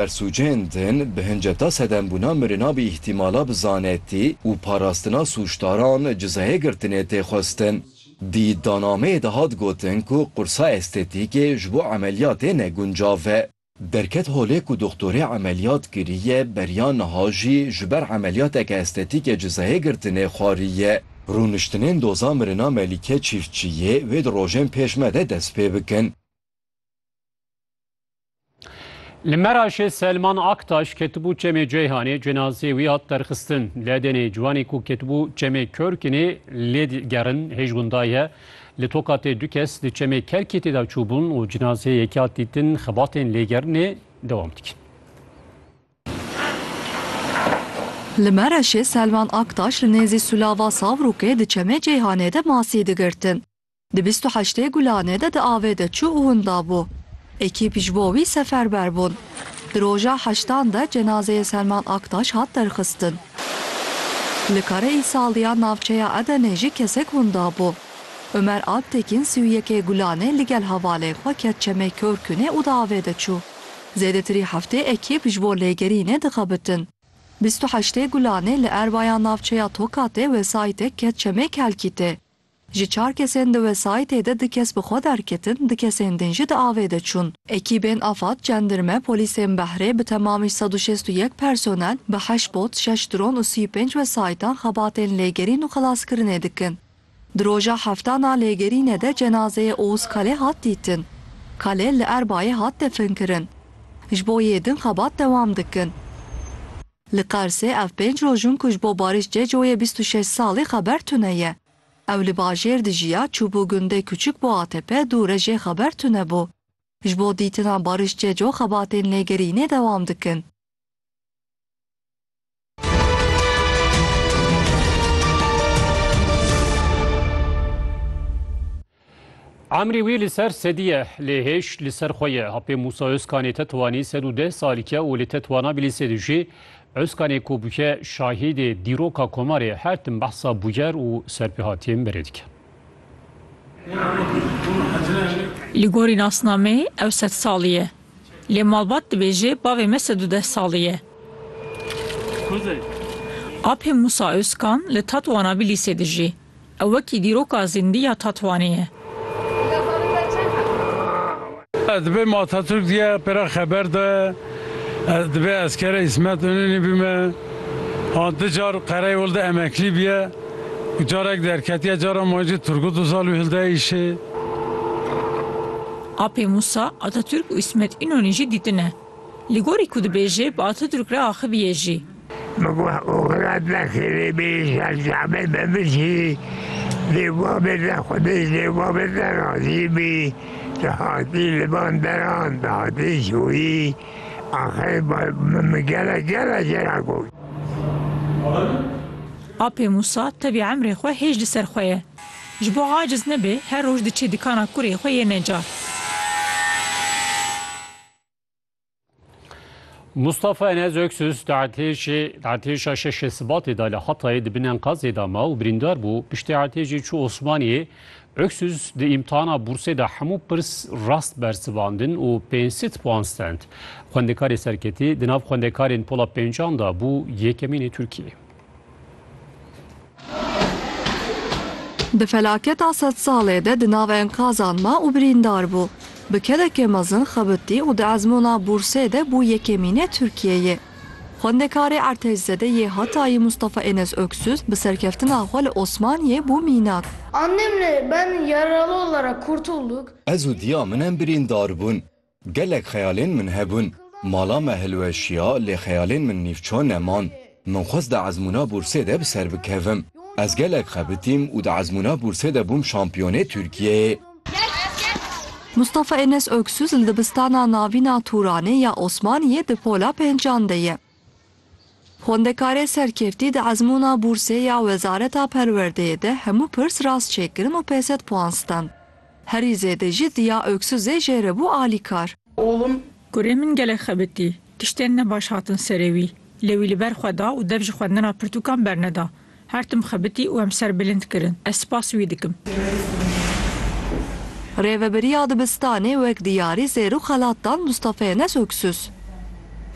Persûcên din bi hinceta sedembûna mirina bi îhtîmala bi zanetî û parastina sûcdaran cizayê girtinê tê xwestin. Di îddianameyê de hat gotin ku qursa estetîkê ji bo emeliyatê ne guncav e. Derket holê ku doxtorê emeliyat kiriye beriya niha jî ji ber emeliyateke estetîkê cizayê girtinê xwariye. Rûniştinên doza mirina Melîke Çîftçiyê wê di rojên pêş me de dest pê bikin. Li Meraşê Selman Aktaş ketibû çemê Ceyhanê cenazê wî hat derxistin. Ledênê ciwanê ku ketibû çemê Körkinê lê gerin hêj windaye. Li Tokatê du kes di çemê Kerkêtê de çûbûn û cenazê yekê hat dîtin xebatên lêgerinê dewam dikin. Li Meraşê Selman Aktaş li nêzî Sulava Savrûkê di çemê Ceyhanê de masî digirtin. Di bîst û heştê gulanê de di avê de çû û winda bû. Ekîp ji bo wî seferber bûn. Di roja heştan de cenazeyê Selman Aktaş hat derxistin. Li Kare Îsaldî ya navçeya Edenê jî kesek winda bû. Umer Alptekîn sî û yekê gulanê li gel hevalên xwe ket çemê Kêrkûnê û di avê de çû. Zêdetirî heftê ekîp ji bo lêgerînê dixebitin. Bîst û heştê gulanê li erba ya navçeya Tokatê wesayîtek ket çemê Kelkîtê. Ji çar kesên di wesayîtê de du kes bi xwe derketin, du kesên din jî di avê de çûn. Ekîbên Afad, Cendirme, Polîsên Behrê bi temamî sed û şêst û yek personel, bi heşt bot, şeş dron û sî û pênc wesayîtan xebatên lêgerîn û xelaskirinê dikin. Di roja heftan a lêgerînê de cenazeyê Oğuz Kale hat dîtin. Kale li Erbayê hat definkirin. Ji bo yê din xebat dewam dikin. Li Qarsê ev pênc roj in ku ji bo Barîş Cecoyê bîst û şeş salî xeber tune ye. Ew li bajêr dijiya, çûbû gundê Kuçuk bo ATP'ê dû re jê xeber tune bû. Ji bo dîtina Barîş Ceco xebatên lêgerînê dewam dikin. Emrê wî li ser sedî ye, lê hêj li ser xwe ye. Apê Mûsa Ozkanê tetwanî sed û deh salîk e û li tetwana bî li sed û jê. Ozkanê ku bûye şahîdê dîroka komarê her tim behsa bûyer û serpêhatiyên berê dike. Li gorî nasnameyê ew sed salî ye. Lê malbat dibêje bavê me sed û deh salî ye. Apê Mûsa Ozkan li tetwana bî li sed û jê. Ew wekî dîroka zîndî ya Tatwanê ye. Ez dibêm Atatürk diye pêra xeber de ez dibê eskere Îsmet Ununî bîme. Ha du car Qereyê Ol de emeklî biye û carek derketiye cara ma jî Turgut Uzal û hilde îşê. Apê Musa, Atatürk û Îsmet Ununî jî dîtine. Li gorî ku dibêjê bi Atatürk re axivîye jî. Min got Oxira te xêrê bê îşal çavê te bişî, lê bavê te xwedê ji lê bavê te razî bî, tu hatî li van deran, tu hatî şoyî, axir min bi gelek gelek jina got. Apê Mûsa tevî emrê xwe hêj li ser xwe ye. Ji bo aciz nebe her roj diçe dikana kurê xwe yê necar. Mustafa Enez Öksüz di artêşa şeşê Sibatê da li Hatayê di bin enkazê da ma û birîndar bû. Piştî artêşê çû Osmaniyê. Öksüz di îmtihana bûrsê da hemû pirs rast bersivandin û pênc sed puan stend. Xwendekarê serketî di nav xwendekarên pola pêncan da bû yekemîn ê Tirkiyeyê. Di felaketa sedsalê de di nav enkazan ma û birîndar bû. Bi kedekê mezin xebitî û di ezmûna bûrsê de bû yekemînê Tirkiyeyê. Xwendekarê Ertejzede yê Hatayî Mustafa Enes Öksüz bi serkeftina xwe li Osmaniyê bû mînak. Annemle ben yaralı olarak kurtulduk. Ez û diya min em birîndar bûn. Gelek xeyalên min hebûn. Mala me hilweşiya lê xeyalên min nîvço neman. Min xwest di ezmûna bûrsê de bi ser bikevim. Ez gelek xebitîm û di ezmûna bûrsê de bûm şampiyonê Tirkiyeyê. Mustafa Enes Öksüz li dibistana navîn a Turanê ya Osmaniyê di pola pêncan de ye. Xwendekarê serkevtî di ezmûna bûrsê ya Wezareta Perwerdeyê de hemû pirs rast çêkirin û pê sed puan stand. Herî zêde jî Diya Öksüzê jê re bû alîkar. Oğlum. Kurê min gelek xebitî. Tiştên ne baş hatin serê wî. Lê wî li ber xwe da û dev ji xwendina pirtûkan berneda. Her tim xebitî û em ser bilind kirin. Ez spas wî dikim. Rêvebiriya dibistanê wek diyarî zêr û xelat dan Mustafa Enes Öksüz.